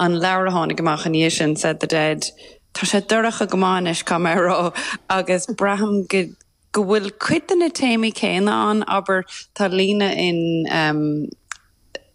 an leabhar a tháinig amach ina dhiaidh sin, Said the Dead, tá sé dorcha go maith anois, caithfidh mé a rá, agus braithim go go bhfuil cuid de na téamaí céanna ann, abair, tá líne in ehm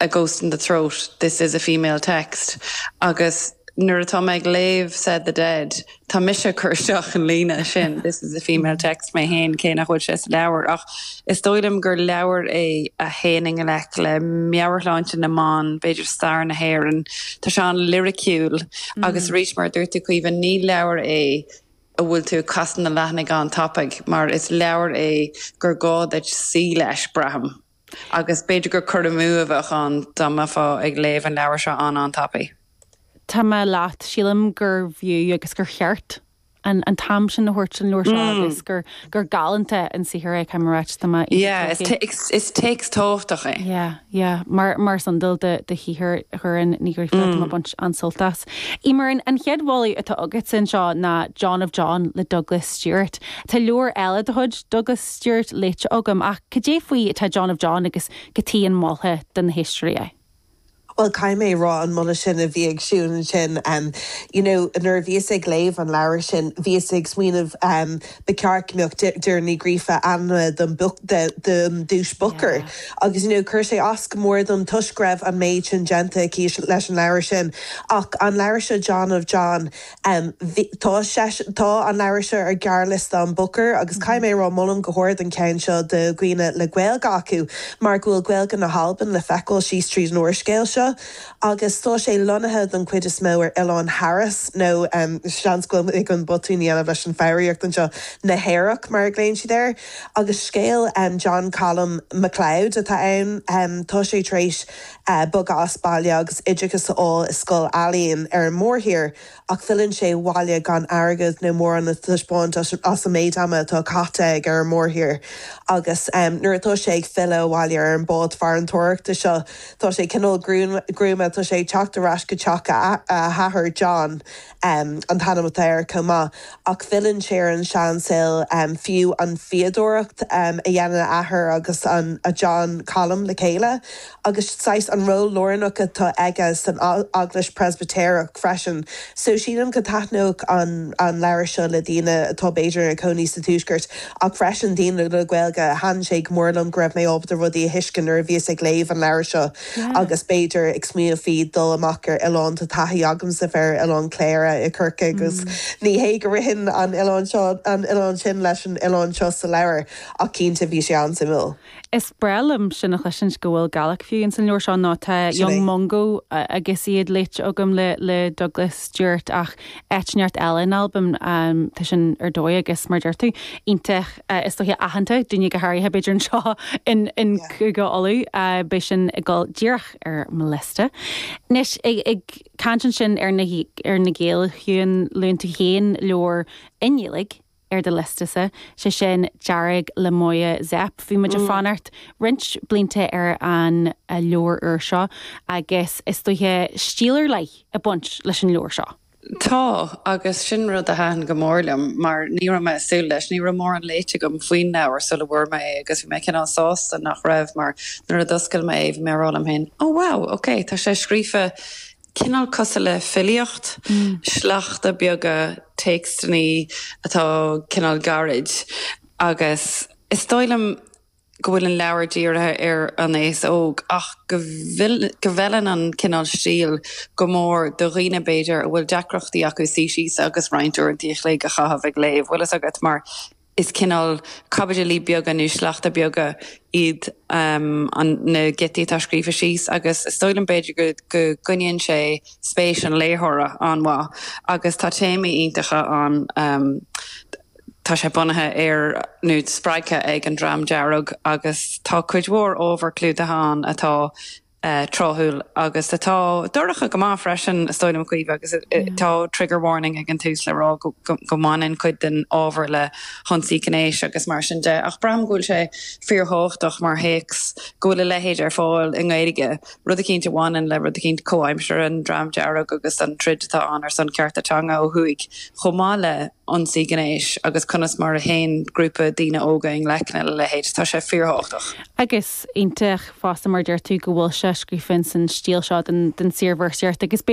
A Ghost in the Throat, this is a female text, agus nuair atá mé ag léamh Said the Dead, Tá mise ag cur isteach an líne sin, this is a female text mé féin cé nach bhfuil sé sa leabhar ach is dóigh liom gur leabhar é a théann i ngleic le meabhairshláinte na mban, b'fhéidir stair na hÉireann. Tá sé an-liriciúil agus arís mar a dúirt tú Caoimhe, ní leabhar é a bhfuil tú ag casadh na leathanaigh an-tapaidh mar is leabhar é gur gá duit suí leis, braithim. Agus b'fhéidir gur cur amú a bheadh ann dá mbeifeá ag léamh an leabhair seo an-an-tapaidh. Tá mé leat, sílim gurbh fhiú agus gur cheart an t-am sin a thabhairt don leabhar seo agus gur galánta an saothar é, caithfidh mé a ráit, domsa is téacs tábhachtach é. Yeah, yeah, mar is iondúil de shaothar Dhoireann Ní Ghríofa, tá mé baint an-sult as. Eimear, an chéad mholadh atá agatsa anseo ná John of John le Douglas Stuart. Tá leabhar eile de chuid Douglas Stuart léite agam ach cad é faoi atá John of John agus goidé an moladh do na héisteoirí. Bhuel caithfidh mé a rá an moladh sin a bhí ag Siún ansin you know nuair a bhíos ag léamh an leabhair sin bhíos ag smaoineamh ba cheart go mbeadh Doireann Ní Ghríofa ainmnithe don don duais Booker agus you know chuir sé as go mór dom toisc go raibh an méid sin déanta aici leis an leabhar sin ach an leabhar seo John of John Bhí, tá seisean, tá an leabhar seo ar ghearrliosta an Booker agus caithfidh mé a rá molaim go hard an ceann seo do dhaoine le Gaeilge acu mar go bhfuil Gaeilge na hAlban le feiceáil síos tríd an úrscéal seo agus tá sé lonnaithe don chuid is mó ar Oileán Harris nó seans go bhfuil mé ag botún a dhéanamh leis an foghraíocht anseo, Na Hearadh mar a ghlaonn siad air. Agus scéal John Calum Macleod atá ann. Tá sé tar éis. bogadh as baile agus oideachas a fháil i scoil ealaíon ar an mórthír ach filleann sé abhaile gan airgead nó mórán le taispeáint as an méid ama atá caite aige ar an mórthír agus nuair atá sé ag filleadh abhaile ar an bád farantóireachta seo tá sé cineál gruama tá sé ag teacht ar ais go teach a athar John. an t-ainm atá air chomh maith, ach filleann sé ar an seansaol, fiú an fhíodóireacht a dhéanann a athair agus an John Calum le chéile, agus saghas an ról lárnach atá aige san Eaglais Preispitéireach freisin. So sílim go taitneoidh an leabhar seo le daoine atá b'fhéidir ina cónaí sa Tuaisceart, ach freisin daoine le Gaeilge. Thaitin sé go mór liom go raibh mé ábalta rudaí a thuiscint nuair a bhíos ag léamh an leabhair seo. agus b'fhéidir ag smaoineamh faoi dul amach ar oileán. Tá taithí agamsa bheith ar Oileán Chléire i gCorcaigh agus ní hé go raibh an oileán seo, an oileán sin leis an oileán seo sa leabhar ach cinnte bhí sé an-suimiúil. Is breá liom sin a chloisint go bhfuil Gaeilge fiú ins an leabhar seo mar tá Young Mungo agus iad léite agam le Douglas Stuart ach áit éigin eile in Albain. Tá sin ar dóigh agus mar deir tú, iontach so-aitheanta do dhaoine go háirithe b'fhéidir anseo i gCúige Uladh, beidh sin ag dul díreach ar mo liosta. Anois, ag caint ansin ar na Gaeil, a Shiún, luann tú féin leabhar i nGaeilge. ar do liosta-sa, sé sin Dearg le Máire Zepf. Bhí muid ag fanacht roinnt blianta ar an leabhar úr seo agus is dóiche, stíl ar leith ag baint leis an leabhar seo. Tá, agus sin rud a thaitin go mór liom mar ní raibh mé ag súil leis. Ní raibh mórán léite agam faoin leabhar sula bhfuair mé é agus bhí mé cineál sásta nach raibh mar nuair a d'oscail mé é bhí mé ag rá liom féin, 'Ó wow, ok, tá sé scríofa cineál cosúil le filíocht, sleachta beaga téacsanna atá cineál gairid agus is dóigh liom go bhfuil an leabhar dírithe ar an aos óg ach go bhfeileann an cineál stíl go mór do dhaoine b'fhéidir a bhfuil deacrachtaí acu suí síos agus roinnt uaireanta a chloig a chaitheamh ag léamh. Bhfuil fhios agat mar Is cineál caibidilí beaga nó sleachta beaga iad na giotaí atá scríofa síos agus is dóigh liom b'fhéidir go gcoinníonn sé spéis an léitheora an-mhaith agus tá téamaí iontacha ann. Tá sé bunaithe ar nó spreagtha ag an Dream Dearg agus tá cuid mhór ábhar clúdaithe ann atá tráthúil agus atá dorcha go maith freisin, is dóigh liom, a Chaoimhe, agus tá trigger warning ag an tús le rá go mbaineann cuid den ábhar le hionsaí gnéis agus mar sin de ach braithim go bhfuil sé fíorthábhachtach mar théacs go bhfuil a leithéid ar fáil i nGaeilge, rud eicínt a bhaineann le rud eicínt comhaimseartha, an Dream Dearg agus an troid atá ann ar son cearta teanga ó thuaidh chomh maith le. ionsaí gnéis agus conas mar a théann grúpa daoine óga i ngleic lena leithéid. Tá sé fíorthábhachtach. Agus iontach fosta mar a deir tú go bhfuil sé scríofa ins an stíl seo den saorvéarsaíocht agus.